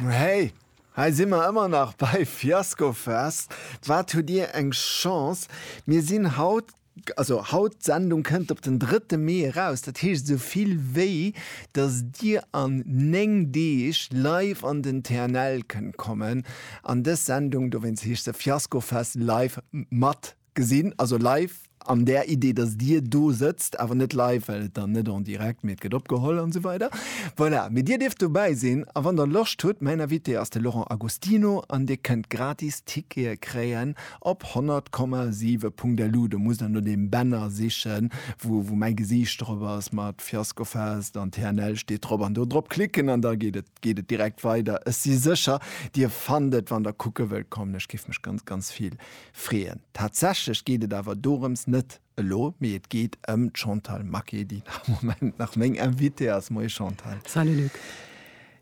Hey, hei si mer ëmmer nach bei Fiaskofest. Wat hutt Dir eng Chance, mir sinn haut, also haut, d'Sendung kënnt op den drëtte Mee eraus, dat heescht esou vill wéi datt Dir an 9 Deeg live an den TNL kënnt kommen an dës Sendung, dowéinst heescht se Fiaskofest live, mat Gesinn, also live an där Idee, dass Dir do sëtzt, awer net live, well et dann net en direct, mee et gëtt opgeholl an esou weider. Voilà, mee Dir dierft dobäi sinn a wann Der Loscht hutt, mäin Invité ass de Laurent Agostino an Dir kënnt gratis Tickete kréien op 100,7.lu. Do musst Der no deem Banner sichen, wou mäi Gesiicht drop ass mat Fiasco Fest an TNL steet drop an do drop klicken an da geet et, geet et direkt weider. Ech si sécher, Dir fannt et, wann Der kucke wëllt kommen. Ech géif mech ganz, ganz vill freeën. Tatsächlech geet et awer dorëms net elo, mee et geet ëm d'Chantal Maquet, déi am Moment nach meng Invitée ass. Moie Chantal. Salut Luc.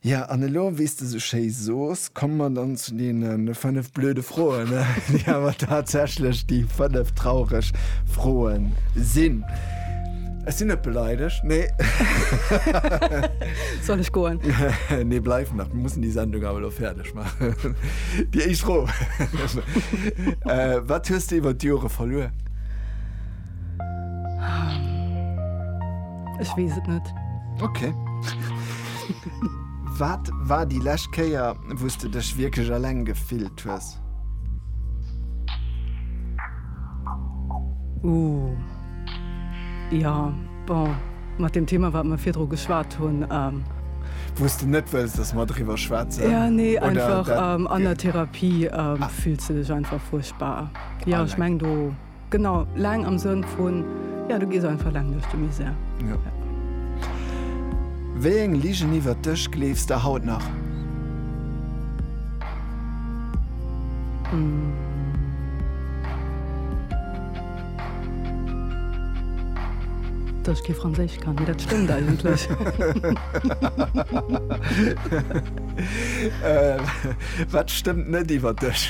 Jo, an elo, wéi s de esou schéi sos, komme mer dann zu deene fënnef blöde Froen, déi awer tatsächlech déi fënnef traureg Froe sinn. Ech sinn net beleidegt, nee. Soll ech goen? Nee, bleif nach, mir mussen déi Sendung awer elo fäerdeg. Déi éischt Fro, Wat hues de iwwer d'Jore verluer? Ech weess et net. Ok. Wat war déi lescht Kéier, wou s de dech wierklech eleng gefillt hues? Ooh, jo. Bon, mat deem Thema, wat mer virdru geschwat hunn. Wou s de net wëlls, dass mer driwwer schwätzen? Jo, nee, einfach an der Therapie fills de dech einfach fuerchtbar. Jo, ech meng do, genau, laang am Sënn vun, jo, du gees einfach laang duerch de Misär. Jo. Wéi eng Ligen iwwert dech gleefs de haut nach? Hm. Dass ech kee Franséisch kann, mee dat stëmmt eigentlech. Wat stëmmt net iwwer dech?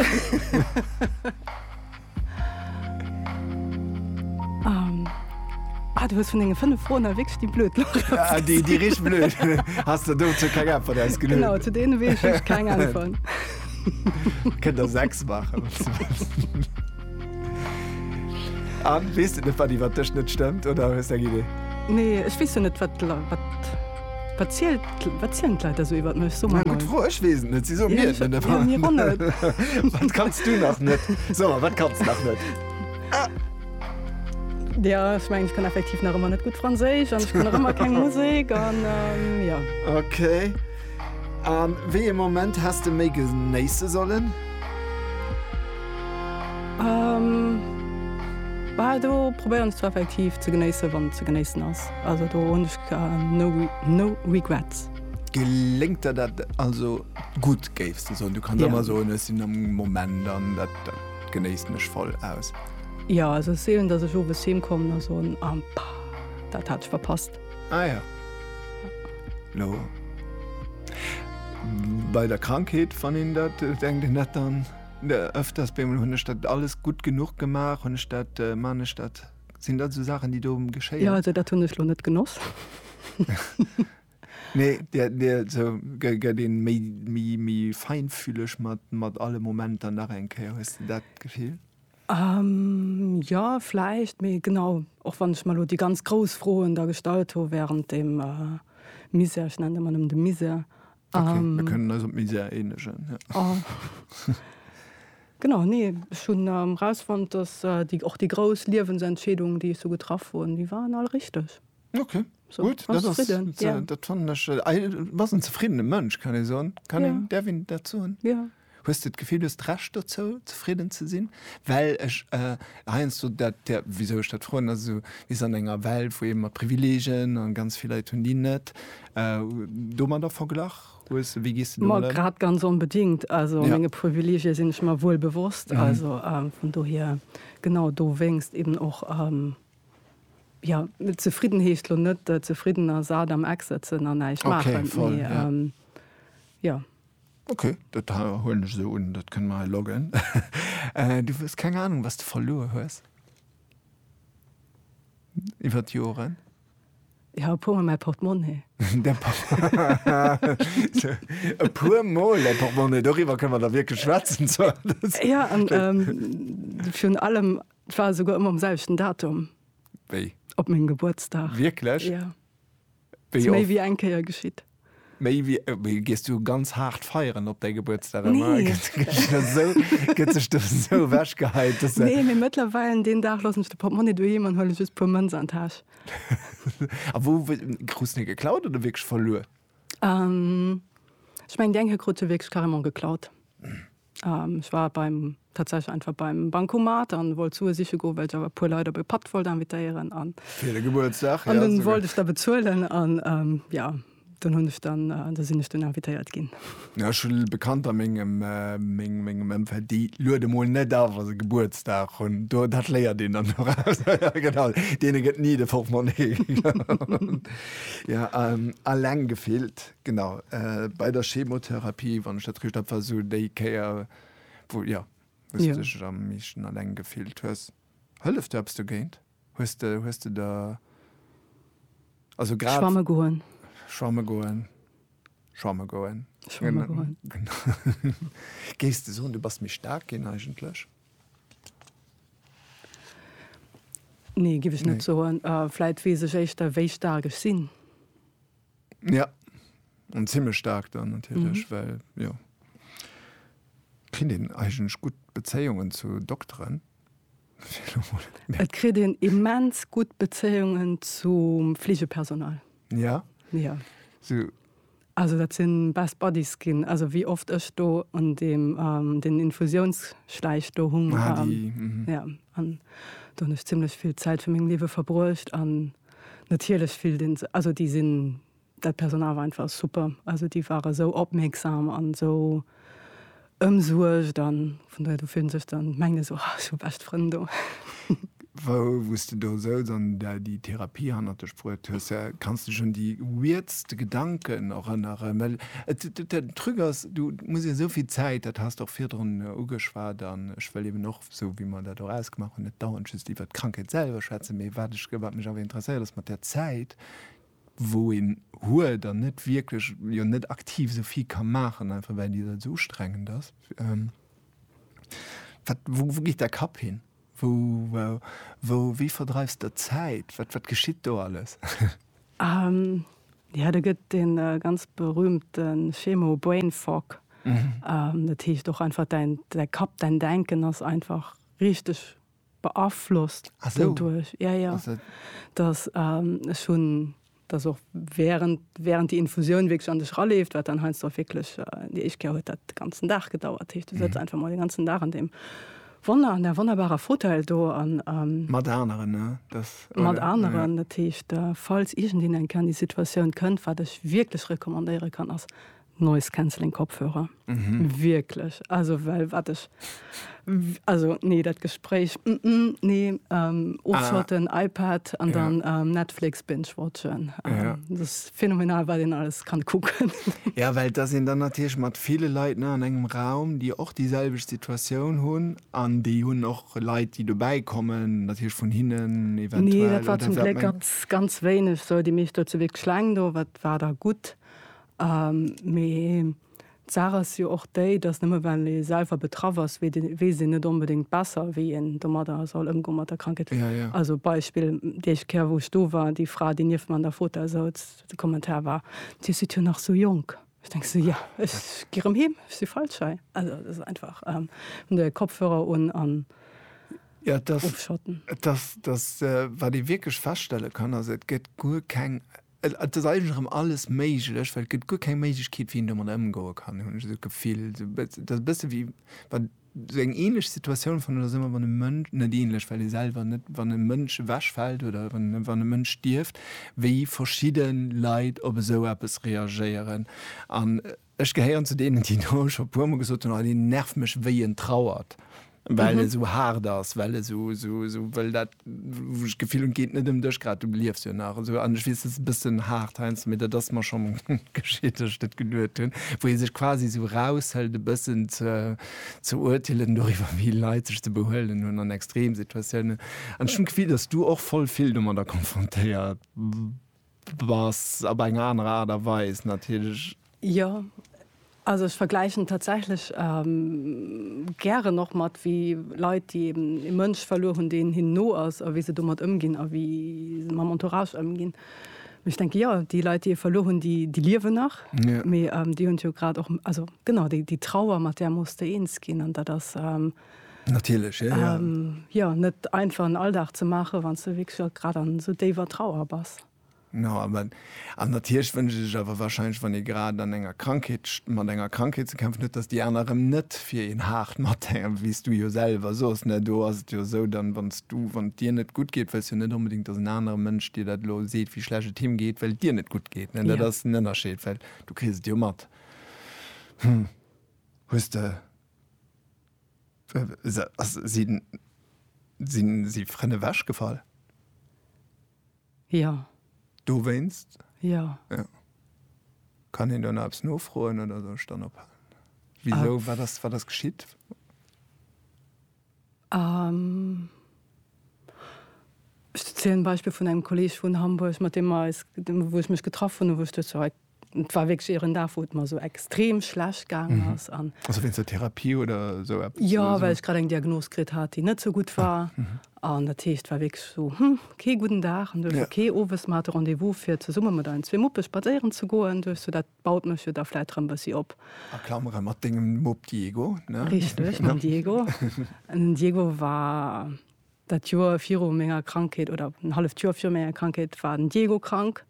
Du hues vun denge fënnef Froen hei wierklech déi blöd Lach geholl. Déi richteg blöd. Has de dozou keng Äntwert ausgeluecht? Genau, zu deene weess ech keng Äntwert. Kënnt der sechs maachen, wann s de wëlls. Anne, weess de net, wat iwwer dech net stëmmt, oder hues de eng Idee? Nee, ech weess jo net, wat d'Leit, wat, wat zielt, wat zielen d'Leit da sou iwwer mech? So mol. Gutt Fro, ech weess et net, si soen mir et net. Jo, mir och net. Wat kanns du nach net? So mol, wat kanns de nach net? Jo, ech mengen, ech kann effektiv nach ëmmer net gutt Franséisch an ech kann nach ëmmer keng Musek an, jo. Okay. A wéi ee Moment häss de méi genéisse sollen? Bal do probéieren ech zwar effektiv ze genéisse wann ze genéissen ass. Also do hunn ech no regrets. Geléngt der dat also gutt géifs de soen? Du kanns ëmmer soen, ech sinn am Moment an dat genéissen ech voll aus. Jo, also et seelen, datt ech owes heem kommen a soen, ah, dat hat ech verpasst. Ah ja. No. Bei der Krankheet wann een dat äh, denkt en dat dann äh, öfters bemol hunn ech dat alles gutt genuch gemaach, hunn ech dat äh, man ech dat sinn dat so Saachen, déi do geschéien. Ja also dat hunn ech lo net genoss. Nee, der, der, so, gëtt een méi, méi, méi feinfühleg mat, mat alle Momenter nach eng Kéier. Hues du dat Gefill? Jo, vläicht. Mee genau, och wann ech mer elo déi ganz grouss Froen da gestallt hu während deem Misär, ech nennen et ëmmer nëmmen de Misär, Okay, mir kënnen eis op d'Misär eenegen, jo. Genau, nee, ech hunn erausfonnt, dass déi, och déi grouss Liewensentscheedungen, déi ech sou getraff hunn, déi waren all richteg. Okay. So, Gut, dat ass, zufrieden, ze, ja. dat fannen ech, äh, was en zefriedene Mënsch kann e soen. Kann ja. en derwin dat soen? Ja. Hues du d'Gefill hues recht dozou zufrieden ze sinn? Well ech äh, heinsst du dat der wieso ech dat froen as so is an enger Welt, wou eben mat Privilegien an ganz vill Leiit hunn die net äh, do man der verglach hues wie gist du grad ganz onbedingt also ja. menge Privilegie sinn ech mal wuel bewosst mhm. also ähm, vun do hier genau do wéngst eben och. Ähm, Jo, zefridden heescht lo net zefridden a sat am Eck sëtzen a näischt maachen, mee jo. Ok, dat huelen ech esou un, dat kënne mer hei loggen. Du hues keng Anung, wat s de verluer hues iwwer d'Joren? Jo, e puermol mäi Portemonnaie. E puermol däi Portemonnaie, doriwwer kënne mer da wierklech schwätzen. Jo, an virun allem Et war esouguer ëmmer um selwechten Datum. Wéi? Op mengem Gebuertsdag. Wierklech? Ja. Wéi Ass méi oft? wéi eng Kéier geschitt. Méi wéi, äh, wéi gees du ganz haart feieren op däi Gebuertsdag ëmmer? Nee. Gëtt gëtt sech da esou, gëtt sech da esou ewechgeheit, dass se. Nee, mee mëttlerweil deen Dag loossen ech de Portmonni doheem an huele just puer Mënz an d'Täsch. A wou w krus de geklaut oder wierklech verluer? Ähm, ech mengen déi eng hir krut se wierklech carrément geklaut. Ech war beim, tatsächlech einfach beim Bancomat an wollt Sue siche goen, well ech awer e puer Leit op e Patt wollt invitéieren an. Fir de Gebuertsdag, ja. An dunn wollt ech da bezuelen an, ja, dunn hunn ech dann, da sinn ech dunn invitéiert ginn. Ja, ech hu Bekannter a mengem, mengem Ëmfeld, déi luede mol net a wa se Gebuertsdag hunn. Do, dat léiert een dann doraus. Ja, genau, deene gëtt ni de Portmonni. Ja, alleng gefillt. Genau, bei der Chemotherapie, wann ech dat richt hab, war esou déi Kéier, wou, jo, wou s de dech am meeschten alleng gefillt hues. Hëlleft do eppes dogéint? Hues de, hues de der, also grad. Schwamme goen. Schwamme goen. Schwamme goen. Schwamme goen. Géifs de soen, du bass méi staark ginn eigentlech? Nee, géif ech net soen. Vläit weess ech éischter, wéi staark ech sinn. Ja an zimmech staark dann natierlech, well jo kritt een eigentlech gutt Bezéiungen zu Dokteren, fir elo mol mé. Et kritt een immens gutt Bezéiungen zum Fleegepersonal. Ja? Ja. So. Also dat sinn best buddies ginn, also wéi oft ech do an deem den Infusiounsschläich do hung. Ah déi, mhm. Ja an do hunn ech zimmlech vill Zäit vu mengem Liewe verbruecht an. natierlech fillt een sech, also déi sinn, dat Personal war einfach super, also déi ware esou opmierksam an esou ëmsuergt a vun dohier, do fillt een sech dann, mengt een esou, oh ech hu bescht Frënn do. Wou s de do souz an där déi Therapie hannert dech bruet hues, kanns de dech un déi weirdste Gedanken erënneren? Well den Truc ass, do muss ee esou vill Zäit, dat has de och virdrun ugeschwat an ech wëll eeben och, esou wéi mer dat och ausgemaach hunn, net dauernd just iwwert d'Krankheet selwer schwätzen, mee wat ech, wat mech awer interesséiert ass mat där Zäit, wou een huet an net wierklech, jo net aktiv esou vill ka maachen, einfach well déi Zäit esou ustrengend ass, wat, wou, wou geet däi Kapp hin? Wou, wou, wéi verdreifs de d'Zäit? Wat, wat geschitt do alles? Jo, do gëtt dee ganz berühmte Schemo Brain Fog. Dat heescht och einfach däin Kapp, däin Denken ass einfach richteg beaflosst doduerch. Jo, jo. Dass ech hunn, dass och während, während déi Infusioun wierklech an dech raleeft, wat dann heiansdo och wierklech, déi éischt Kéier huet dat de ganzen Dag gedauert. Dat heescht, du sëtz einfach mol den ganzen Dag an deem. Wonner an där wonnerbarer Fauteuil do an. Mat aneren, ne? Dass, oder? Mat aneren, dat heescht, falls iergendeen enk an déi Situatioun kënnt, wat ech wierklech recommandéiere kann, ass Noise Cancelling Kopfhörer. Wierklech. Also, well wat ech, also, nee, dat Gespréich, nee, ofschotten, iPad an dann Netflix binge-watchen, dat ass. Phänomenal wat een alles kann kucken. Ja well et ass een dann natierlech mat ville Leit ne an engem Raum déi och déi selwecht Situatioun hunn an déi hunn och Leit déi dobäi kommen natierlech vun hinnen eventuell. Nee dat war zum Gléck ganz ganz wéineg sou déi meescht do zu Wierkleng do wat war da gutt mee. D'Saach ass jo och déi, dass nëmme well ee selwer betraff ass, weess een net onbedéngt besser, wéi een domadder soll ëmgoen, mat der Krankheet. Also Beispill, déi éischt Kéier, wou ech do war, déi Fra, déi nieft mer an der Fota souz, de Kommentar war, Dir sidd jo nach esou jonk. Ech denke sou, Jo, ech gi rëm heem, ech si falsch hei. Also dat ass einfach, hunn de Kopfhörer un an ofschotten. Jo, et ass, wat ee wierklech feststelle kann, ass, Et gëtt guer keng. Et ass eigentlech erëm alles méiglech, well et gëtt guer keng Méiglechkeet, wéi een domadder ëmgoe kann, hunn ech esou d'Gefill. Et ass e bësse wéi wann, esou eng änlech Situatioun fannen ech dat ëmmer, wann e Mënsch, net änlech, well ee selwer net, wann e Mënsch ewechfält oder wann e Mënsch stierft, wéi verschidde Leit op esou eppes reagéieren. An Ech gehéieren zu deenen, déi do scho e puermol gesot hunn, Oh, deen nervt mech wéi en trauert, well e sou haart ass, well e sou, sou, sou wëll dat, wou ech d'Gefill hunn, et geet net ëm dech grad, du liefs jo nach esou. An ech weess, dat ass e bëssen haart heiansdo, mee dat ass mer scho geschitt, datt ech dat geduet hunn, wou ee sech quasi sou eraushëlt e bëssen ze, ze urteelen doriwwer, wéi Leit sech ze behuelen hunn an Extremsituatiounen. An ech hunn d'Gefill, datt s du och voll vill domadder konfrontéiert. Bass op eng aner Aart a Weis natierlech. Jo, also ech vergläichen et tatsächlech gären och mat wéi Leit, déi eben ee Mënsch verluer hunn, deen hinnen no ass a wéi se domat ëmginn a wéi se mam Entourage ëmginn. Mee ech denke jo, déi Leit, déi ee verluer hunn, déi liewen nach, mee déi hunn et jo grad och, also genau, déi Trauer, mat där muss de eens ginn an dat ass, Natierlech, jo. Jo, net einfach en Alldag ze maachen, wann s de wierklech och grad an esou déiwer Trauer bass. No, awer, an natierlech wënscht ee sech awer wahrscheinlech, wann ee grad an enger Krankheet, mat enger Krankheet ze kämpfen huet, datt déi aner erëm net fir een haart mathänken, wéi s du jo selwer sos, ne? Do ass et jo esou, dann, wann s du, wann et dir net gutt geet, wëlls jo net onbedéngt, datt en anere Mënsch dir dat elo seet, wéi schlecht et him geet, well et dir net gutt geet, ne? Dat ass den Ënnerscheed, well du kriss et jo mat. Hm, hues de Sinn si Frënn ewech gefall? Jo. Dowéinst? Jo. Kann een do nach eppes nofroen oder soll ech dann ophalen? Wisou? Wat ass geschitt? Ech zielen d'Beispill vun engem Kolleg vun Hamburg, mat deem mer eis, wou ech mech getraff hunn, wou ech duecht scho, et war wierklech ieren Dag, wou et mer esou extrem schlecht gaangen ass an. Also wéinst der Therapie oder esou eppes? Jo, well ech grad eng Diagnos kritt hat, déi net esou gutt war. An dat heescht, et war wierklech esou, hm, kee gudden Dag. An duecht ech, ok, owes, mer hate Rendez-vous fir zesumme mat eisen zwee Muppe spadséieren ze goen. Duecht ech, dat Baut mech jo da vläit rëm bëssi op. A Klamere mat dengem Mupp Diego, ne? Richteg, mam Diego. Den Diego war dat Joer viru menger Krankheet, oder en halleft Joer viru menger Krankheet war den Diego krank.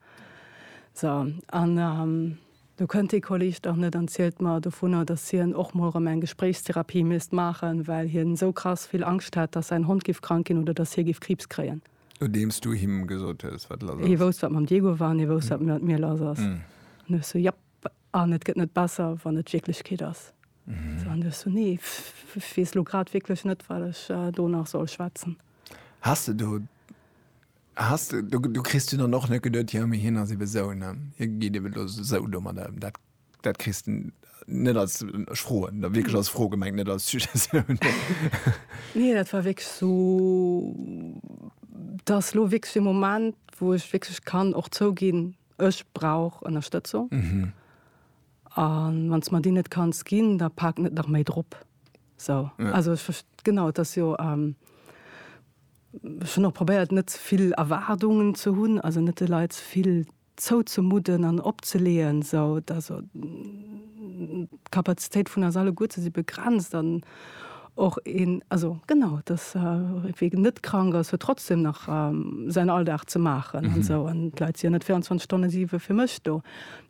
So, an do kënnt dee Kolleg dach net an zielt mer dovunner, dass hien och mol rëm eng Gespréichstherapie misst maachen, well hien esou krass vill Angscht hätt, dass säin Hond giff krank ginn oder dass hie giff Kriibs kréien. Nodeems du him gesot hues, wat lass ass. Hie wousst, wat mam Diego war, an hie wousst, wat mat mir lass ass. An du hues so, Japp. An et gëtt net besser, wann et d'Wierklechkeet ass. An du hues so, Nee, ech weess elo grad wierklech net, wat ech do nach soll schwätzen. Has de do, has de do, du kriss dunn dann och net geduet, Jo, mee hien ass ebe sou, ne? Hie geet ebe elo sou domadder ëm. Dat. Dat kriss de net als, ech froen da wierklech als Fro gemengt, net als Suggestioun. Nee, dat war wierklech esou, dat ass elo wierklech e Moment, wou ech wierklech kann och zouginn, ech brauch Ënnerstëtzung. A wann s de mer déi net kanns ginn, da pak net nach méi drop. Esou, also ech verst-, genau, et ass jo, ech hunn och probéiert, net ze vill Erwaardungen ze hunn, also net de Leit ze vill. zouzemudden an opzeleeën, esou dass d'Kapazitéit vun eis alleguerten si begrenzt an och een, also genau, dass wee net krank ass, huet trotzdem nach säin Alldag ze maachen an esou an d'Leit si jo net 24 Stonne siwe fir mech do.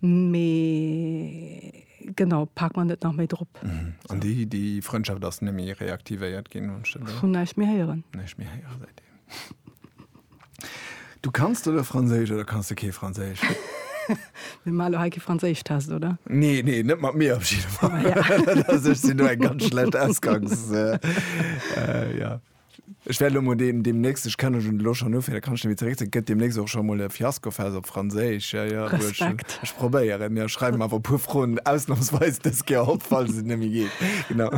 Mee genau, pak mer net nach méi drop. An déi Frëndschaft ass net méi reaktivéiert ginn? Vun näischt méi héieren. Näischt méi héieren säitdeem. Du kanns oder Franséisch oder kanns du kee Franséisch? Mir malo heike Franséisch test oder? Nee nee net mat mir abschied sinn du eng ganz schlecht ausgangs äh, äh, ja. Ech werde mo dem dem nächste ich kann schon lo schon nofir kann wie zeré gëtt dem nächste och schon mo Fiasko fest op Franséisch ja, ja, Ech probéieren ja schreiben awer pu Froen ausnahmsweis dës Ger op falls se nemmi geet genau.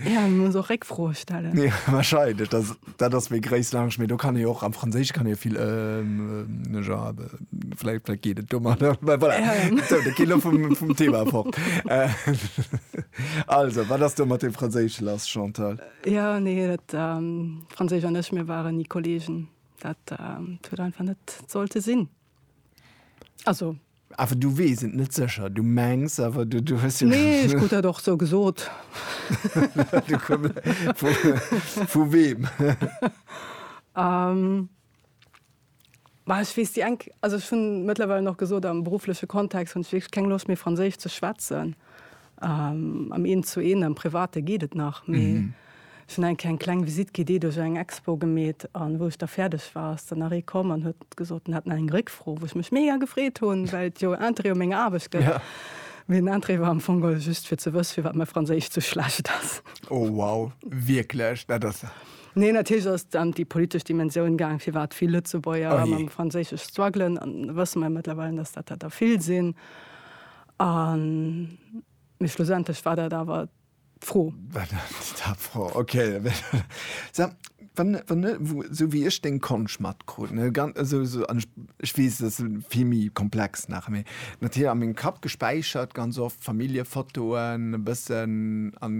Ja, mir muss och Réckfroe stellen. Nee, wahrscheinlich. Das, das ist mir gréis lang. Mir do kann ich auch am Französisch kann ich viel ähm, ne ja, vielleicht, vielleicht geht es dummer. Voilà. Ja. So, da geht vom, vom Thema fort. Äh, also, was hast du mit dem Französisch lass, Chantal? Ja, nee, dat ähm, Französisch an ich, mir waren nie Kollegen. Dat ähm, tut einfach net sollte sinn. Also. Awer du weess et net sécher. Du mengs awer, du, du hues jo. Nee, ech krut dat och sou gesot. vu, vu weem? Um, ech weess déi eng, also ech hunn mëttlerweil nach gesot, am beruffleche Kontext hunn ech wierklech keng Loscht méi Franséisch ze schwätzen. Am Eent zu Eent, am Private geet et nach, mee ech hunn eng keng kleng Visite guidée duerch eng Expo gemeet. An wou ech da fäerdeg war, ass dann nach ee komm an huet gesot, en hätt nach eng Réckfro, wou ech mech mega gefreet hunn, well et jo Interêt u menger Aarbecht gëtt. Mee den Interêt war am Fong geholl just fir ze wësse firwat mäi Franséisch sou schlecht ass. Oh wow, wierklech? Dat ass. Nee, natierlech ass et ëm déi politesch Dimensioun gaang, firwat vill Lëtzebuerger mam Franséisch struggelen. An da wësse mer jo mëttlerweil, dass dat der vill sinn. A mee schlussendlech war dat awer d'Fro. War dat d'Fro, okay. Sag, wann, wann, esou wéi ech deng Konsch matkrut, ne, ganz esou, esou, an ech, ech weess, dat ass vill méi komplex nach, mee natierlech a mengem Kapp gespäichert ganz oft Familljefotoen e bëssen an.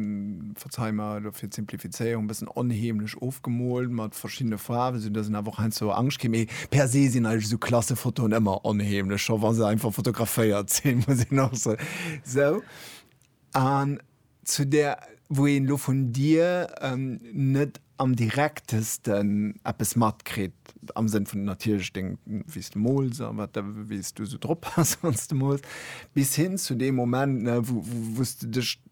Ech hu mer elo fir d'Simplifizéierung e bëssen onheemlech ofgemoolt mat verschiddene Faarwen, esou datt een awer och heiansdo Angscht kritt. Mee per se sinn eigentlech esou Klassefotoen ëmmer onheemlech, scho wa se einfach fotograféiert sinn, muss een och soen. Sou, an zu där, wou een elo vun dir net am direktesten eppes matkritt, am Sënn vun natierlech deng, wéi s de mools a wat, wéi s du esou drop bass, wann s de mools, bis hin zu deem Moment, wou s de dech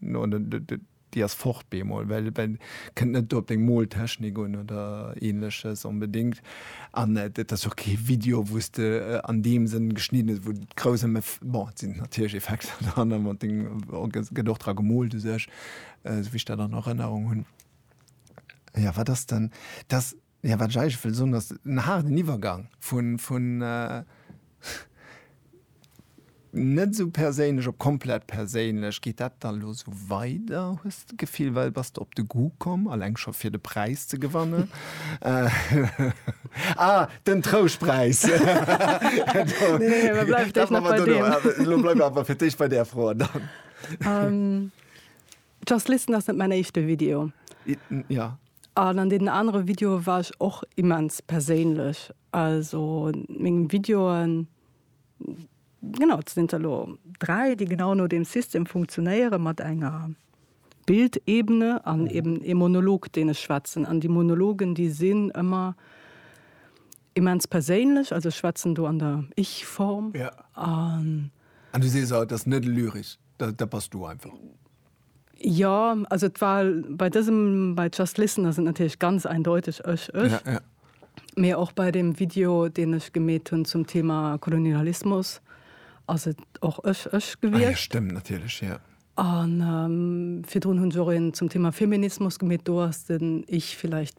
No déi ass fort bemol, well kënnt net do op deng Moltechnik un oder ähnleches onbedingt. An dat ass jo och kee Video wou s de an deem Sënn geschnidden hues, wou grouss am Eff, bon et sinn natierlech Effekter dran an mat deng gëtt och dra gemoolt u sech, esou wéi ech dat an Erënnerung hunn. Jo wat ass dann, dass Jo, wat ech eigentlech wëll soen, ass en haarden Iwwergang vun net esou perséinlech op komplett perséinlech. Geet dat dann elo esou weider, hues de d'Gefill? Well bass de op de Goût komm, alleng scho fir de Präis ze gewannen? Ah, den Trouschtpräis! Nee, mer bleiwen fir d'éischt nach bei deem. Elo bleiwe mer awer fir d'éischt bei där Fro. Just Listen ass net mäin éischte Video. Ja. An an deenen anere Videoe war ech och immens perséinlech. Also mengem Videoen, genau, et sinn der elo dräi, déi genau no deem System funktionéieren, mat enger Bildebene an eben ee Monolog, deen ech schwätzen. An déi Monologen, déi sinn ëmmer immens perséinlech, also ech schwätzen do an der Ich-Form. An du sees och, et ass net lyresch. Da, da bass du einfach. Jo, also et war bei dësem, bei Just Listen ass et natierlech ganz eindeutig ech, ech. Ja, ja. Mee och bei dem Video, deen ech gemeet hunn zum Thema Kolonialismus, ass et och ech, ech Ah ja, gewiescht. stëmmt natierlech, ja. An virdrun hunn ech och een zum Thema Feminismus gemeet, do ass den Ich vielleicht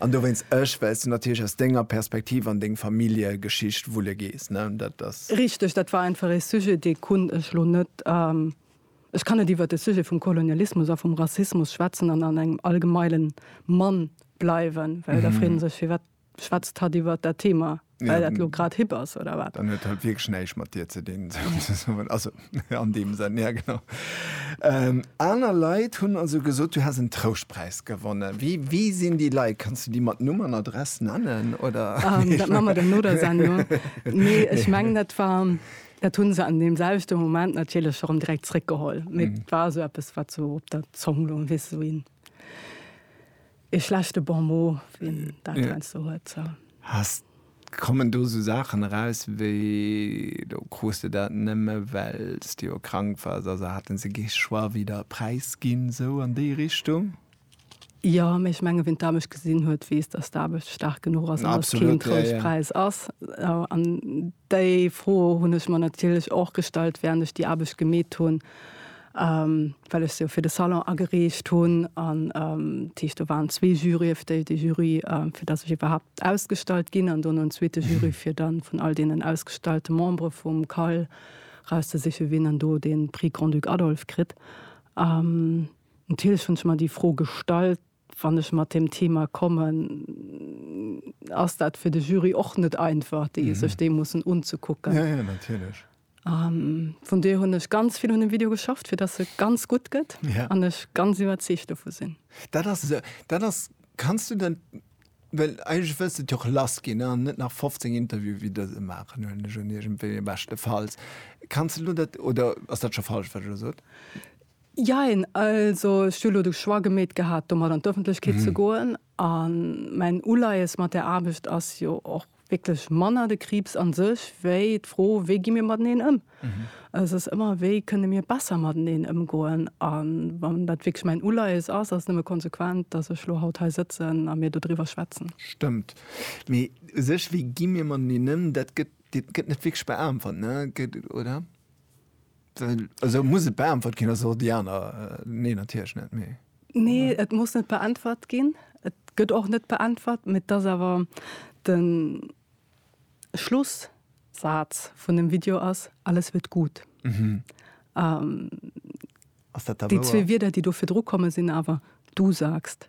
An dowéinst ech, well s du natierlech aus denger Perspektiv an deng Familljegeschicht wulle gees, ne? Dat ass. Richteg, dat war einfach ee Sujet, dee konnt ech elo net, ech kann net iwwert de Sujet vum Kolonialismus a vum Rassismus schwätzen an an engem allgemeile Mann bleiwen, well da freet ee sech, firwat schwätzt hatt iwwert dat Thema Well dat lo grad hip ass, oder wat? Dann huet dat wierklech näischt mat dir ze dinn. Also, an deem Sënn, ja genau. Ähm, aner Leit hunn also gesot, du häss en Trouschtpräis gewonnen. Wie, wie sinn déi Leit? Kanns du déi mat Numm an Adress nennen, oder? Ähm, dat maa mer dann no der Sendung. Nee, ech mengen, dat war, dat hunn se an deem selwechte Moment natierlech erëm direkt zréckgeholl. Mee et war esou eppes, wat sou op der Zong loung, weess esou een. Ee schlechte Bon mot, wien dat heiansdo huet, so. Hast, kommen do sou Saachen eraus wéi, do krus de dat nëmme well s de jo krank wars, also hate se gee Choix wéi der Präis ginn, sou an déi Richtung? Jo, mee ech menge wien d'Aarbecht gesinn huet, weess, datt d'Aarbecht staark genuch ass an datt et keen Trouschtpräis ass. An déi Fro hunn ech mer natierlech och gestallt, wärend ech déi Aarbecht gemeet hunn. well ech se jo fir de Salon agereecht hunn an dat heescht do waren zwee Juryë, déi de Jury fir datt ech iwwerhaapt ausgestallt ginn an dono en zweete Jury fir dann vun all deenen ausgestallte Membere vum CAL rauszesiche wien dann do dee Prix Grand-Duc Adolphe kritt. Natierlech hunn ech mer déi Fro gestallt. Wann ech mat deem Thema kommen, ass dat fir de Jury och net einfach, déi sech dee mussen unzekucken. Vun dohier hunn ech ganz vill un dem Video geschafft, fir dass e ganz gutt gëtt an ech ganz iwwerzeegt dovu sinn. Dat ass esou. Dat ass, kanns du dat, well eigentlech wëlls de et jo och lass ginn an net nach 15 Interviewe wéi dëse maachen, huelen ech un, iergendwéi, beschtefalls. Kanns de elo dat, oder ass dat scho falsch, wat ech elo sot? Jein, also ech hu elo de Choix gemeet gehat, domat an d'Öffentlechkeet ze goen. A mäin Uleies mat där Aarbecht ass jo och wierklech manner de Kriibs a sech, wéi d'Fro, wéi gi mir mateneen ëm. Et ass ëmmer, wéi kënne mir besser mateneen ëmgoen. A wann dat wierklech mäin Uleies ass, ass et nëmme konsequent, datt ech elo haut hei sëtzen a mir dodriwwer schwätzen. Stëmmt. Mee u sech, wéi gi mir mateneen ëm, dat gëtt net wierklech beäntwert, oder? Also muss et beäntwert ginn ass di aner nee natierch net méi. Nee, et muss net beäntwert ginn. Et gëtt och net beäntwert, met dass awer den Schlussaz vun dem Video ass alles wird gut. Mhm. Ähm, ass dat da wouer? Déi zwee Wieder, déi do virdru komme sinn awer du sagst.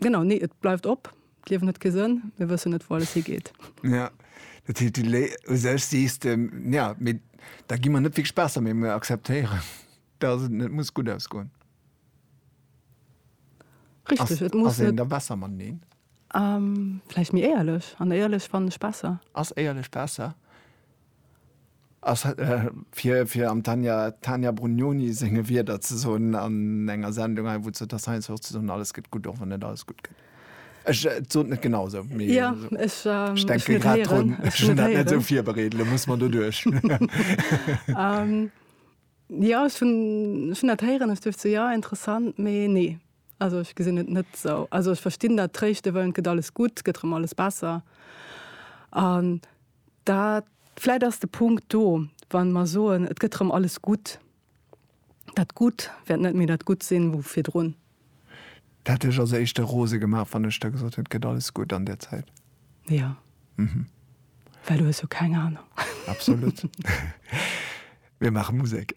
Genau, nee, et bleift op. D'Liewen huet kee Sënn, mir wëssen net, wou alles higeet. Ja, dat heescht, du lé u sech sees de, ja, mee da gi mer net wierklech besser, mee mir akzeptéieren, dass et net muss gutt ausgoen. Richtig, et muss net. Ass een da besser mateneen? Vläicht méi éierlech. An éierlech fannen ech besser. Ass éierlech besser? A fir am Tania Brugnoni senge Wierder ze soen an enger Sendung hei, wou d'Jutta Steins och ze soen, Alles gëtt gutt, och wann net alles gutt gëtt. Ech, et sot net genau esou, mee ech denke grad drun. Ech hunn dat net esou virbereet, elo muss mer doduerch. Jo, ech hunn dat héieren, ech duecht esou, jo, interessant, mee nee. Also ech gesinn et net esou. Also ech verstinn dat, tréischte wëllen, et gëtt alles gutt, et gëtt erëm alles besser. Dat, vläit ass de Punkt do, wa mer soen, et gëtt erëm alles gutt, dat Gutt wäert net méi dat Gutt sinn, wou virdrun. Dat hätt lech als Éischte rose gemaach, wann ech da gesot hätt, et gëtt alles gutt an där Zäit? Jo. Mhm. Well du hues jo keng Anung. Absolut. Mir maache Musek.